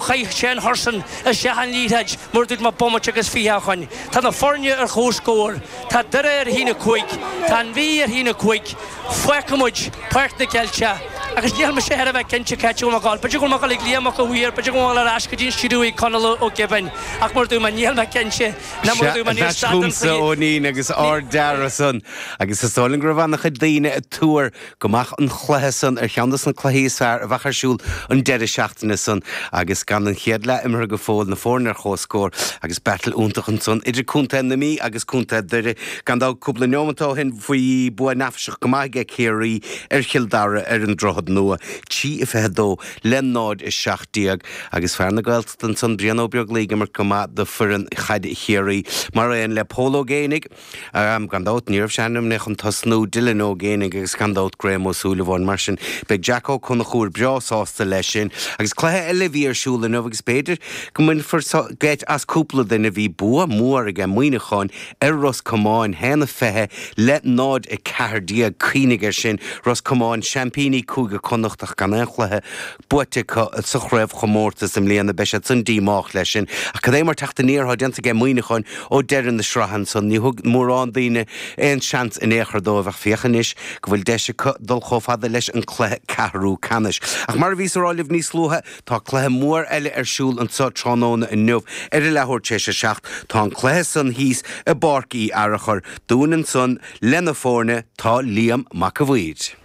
Chaith sé an hursain i seilbh na liathróide mar a dúirt mé bomaite agus fiche a choin. Tá na foirne ar chomhscór. Tá Doire ar a haon a cúig. Tá an Mhí ar a haon a cúig. Fágfaidh muid Páirc na gCeilteach. Agus níl mise thar a bheith cinnte c'áit a bhfuil muid ag gabháil. B'fhéidir go bhfuil muid ag gabháil ag Liam Mac a' Mhaoir, b'fhéidir go bhfuil ar ais go dtí an stiúideo ag Conall Ó Cíobháin, ach mar a dúirt mé níl mé cinnte, ná mar a dúirt mé níl stad den chluiche. Sea, ar ais chugamsa, a iníon, agus ard-dearadh san. Agus is dóigh liom go raibh an-chuid daoine ag tuar go mbeadh an cluiche san ar cheann de na cluichí is fearr a bheadh ar siúl an deireadh seachtaine san agus gan an chéad leath imeartha go fóill, na foirne ar chomhscór agus battle iontach ansan idir Contae na Mí agus Contae Dhoire, gan dabht, cúpla neomat ó shin bhí bua neafaiseach go maith ag Ciarraí ar Chill Dara ar an Droichead Nua, trí a 22 le 0 a 17, agus fear na Gaeltachta ansan, Brian Ó Beaglaoich ag imirt go maith do foireann chaide Chiarraí, mar aon le Pól Ó Géibheannaigh. Gan dabht, ní raibh sé ainmnithe chun tosnú, Dylan Ó Géibheannaigh agus gan dabht Graham Ó Súilleabháin. Mar sin, beidh Jack Ó Conchúir breá sásta leis sin. Agus cluiche eile a bhí ar siúl inniu agus b'fhéidir go mbainfear geit as cúpla duine, bhí bua mór aige Muíneacháin ar Ros Comáin, a haon a 20 le 0, 14. Cuimhnigh ar sin, Ros Comáin, seaimpíní Cúige Connacht ach gan aon chluiche buaite acu sa chraobhchomórtas i mbliana. Beidh siad san díomách leis sin. Ach cad é mar teacht aniar atá déanta aige Muíneacháin ó deireadh na sraithe ansan. Ní thug mórán daoine aon seans in aon chor dóibh ach féach anois go bhfuil deis acu dul chomh fada leis an cluiche ceathrú ceannais. Ach mar a bhíos a rá libh níos luaithe tá cluiche mór eile ar siúl anso tráthnóna inniu ar a leathuair tar éis a seacht. Tá an cluiche san thíos i bPáirc Uí Fhearchair dúinn ansan leis na foirne tá Liam Mac a Mhaoir.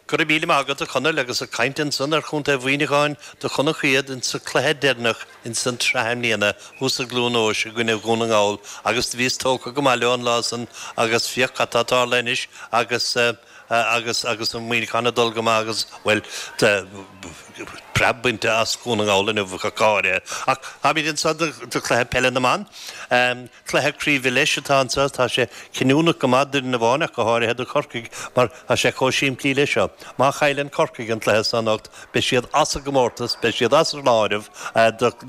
Go raibh míle maith agat a Chonaill agus ag caint ansan ar Chontae Mhuíneacháin do chonac iad ins an cluiche deireanach ins an tsraith i mbliana thuas i gCluan Eois i gcoinne Dhún na nGall agus do bhíos tógtha go maith leo an lá san agus féach cad tá tarlaithe anois agus agus agus Muíneachán ag dul go maith agus bhuel tá preab bainte as Dhún na nGall inniu ach go háirithe ach táimíd anso do chluiche peile na mban. Cluiche craoibhe leis atá anso. Tá sé cinniúnach go maith d'fhoireann amháin ach go háirithe do Chorcaigh mar tá sé chomh simplí leis seo. Má chailleann Corcaigh an cluiche seo anocht, beidh siad as an gcomórtas, beidh siad as an áireamh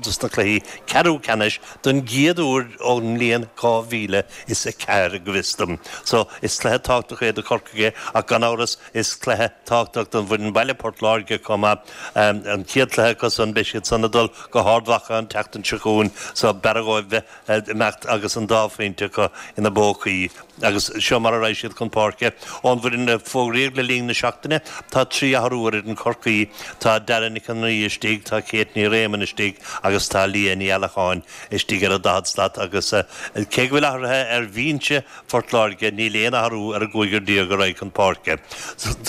dos na cluichí ceathrú ceannais don gcéad uair ón mbliain 2004, go bhfios dom. So, is cluiche tábhachtach é do Chorcaigh é ach gan amhras is cluiche tábhachtach don bhfoireann baile, Port Láirge, chomh maith. An chéad chluiche acu san, beidh siad san ag dul go hArd Mhacha an tseachtain seo chugainn so b'fhearra dhóibh bheith imeacht agus an dá phointe acu ina bpócaí agus seo mar a raghaidh siad chun páirce. Ón bhfoireann a fógraíodh le linn na seachtaine, tá trí athrú ar fhoireann Chorcaí, tá Dara Nic an Rí istigh, tá Kate Ní Réamoinn istigh agus tá Leah Ní Allacháin istigh ar an daichead slat agus cé go bhfuil athruithe ar bhinse Phort Láirge, níl aon athrú ar an gcúigear déag a raghaidh chun páirce.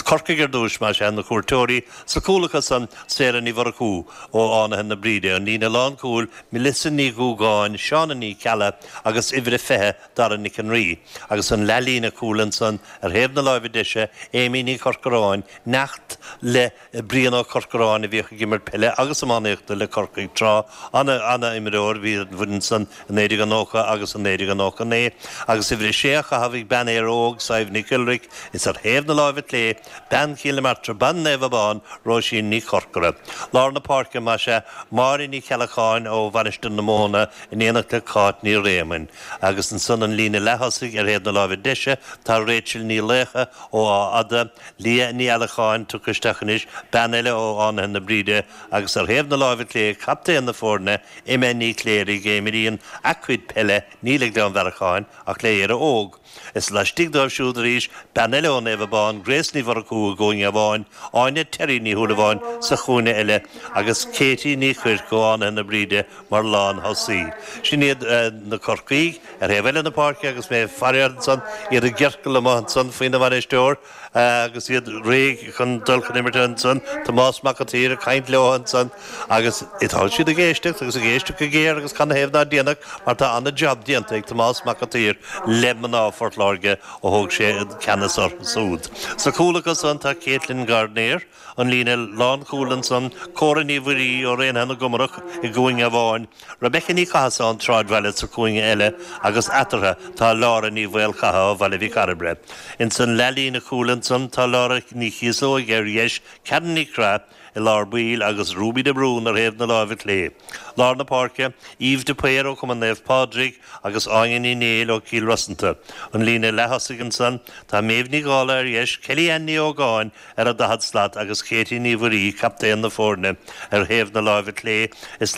Corcaigh ar dtús, más ea, na cuairteoirí, sa gcúl acusan, Sarah Ní Mhurchú ó Fhánaithe na Bríde, an líne lánchúil, Melissa Ní Dhúgáin, Shauna Ní Cheallaigh agus uimhir a 20 Dara Nic an Rí agus an leathlíne cúil ansan ar thaobh na láimhe deise, Amy Ní Chorcoráin, neacht le Brian Ó Corcoráin a bhíodh ag imirt peile agus iománaíochta le Corcaigh tráth, ana, ana imreoir a bhí ar an bhfoireann san i 1990 agus i 1999 agus uimhir a 6 á chaitheamh ag bean Éire Óg, Sadhbh Nic Iolraic is ar thaobh na láimhe clé, Bean Chill na Martra, bean Naomh Abán, Róisín Ní Chorcora. Lár na páirce, más ea, Máire Ní Cheallacháin ó Mhainistir na Móna in éineacht le Cáit Ní Réamoinn. Agus ansan an líne leath-thosaigh ar thaobh na láimhe deise tá Rachel Ní Laocha ó Áth Fhada, Leah Ní Allacháin tugtha isteach anois, bean eile ó Fhánaithe na Bríde, agus ar thaobh na láimhe clé captaen na foirne, Emma Ní Chléirigh, a imríonn a cuid peile ní le Gleann Bhearracháin ach le Éire Óg. Is laistigh dóibh siúd arís, bean eile ó Naomh Abán, Grace Ní Mhurchú i gcúinne amháin, Áine Terry Ní Shúilleabháin sa chúinne eile agus Katie Ní Chuirc ó Fhánaithe na Bríde mar lán-thosaí. Sin iad na Corcaígh ar thaobh eile na páirce agus mé ag faire orthu ansan, iad i gciorcal amuigh ansan faoina mbainisteoir, agus iad réidh chun dul chun imeartha ansan, Tomás Mac an tSaoir ag caint leo ansan agus tá siad ag éisteacht agus ag éisteacht go géar agus canathaobh ná déanfadh mar tá an-jab déanta ag Tomás Mac an tSaoir le mná Phort Láirge ó thóg sé an ceannas orthu súd. Sa chúl acu san tá Katelyn Gardner, an líne lánchúil ansan, Córa Ní Mhuirí ó Raonaithe na gComarach i gcúinne amháin, Rebecca Ní Chathasaigh ón tSráidbhaile sa chúinne eile agus eatarthu tá Laura Ní Mhaolchatha ó Bhaile Mhic Cairbre. Ins an leathlíne cúil ansan tá Laura Ní Chíosóig ar dheis, Karen Nic Craith i lár baill agus Ruby de Brún ar thaobh na láimhe clé. Lár na páirce, Eve de Paor ó Chumann Naomh Pádraig agus Áine Ní Néill ó Chill Rosanta. An líne leath-thosaigh ansan tá Méabh Ní Dhála ar dheis, Kelly Ann Ní Ógáin ar an daichead slat agus Katie Ní Mhuirí captaen na foirne ar thaobh na láimhe clé is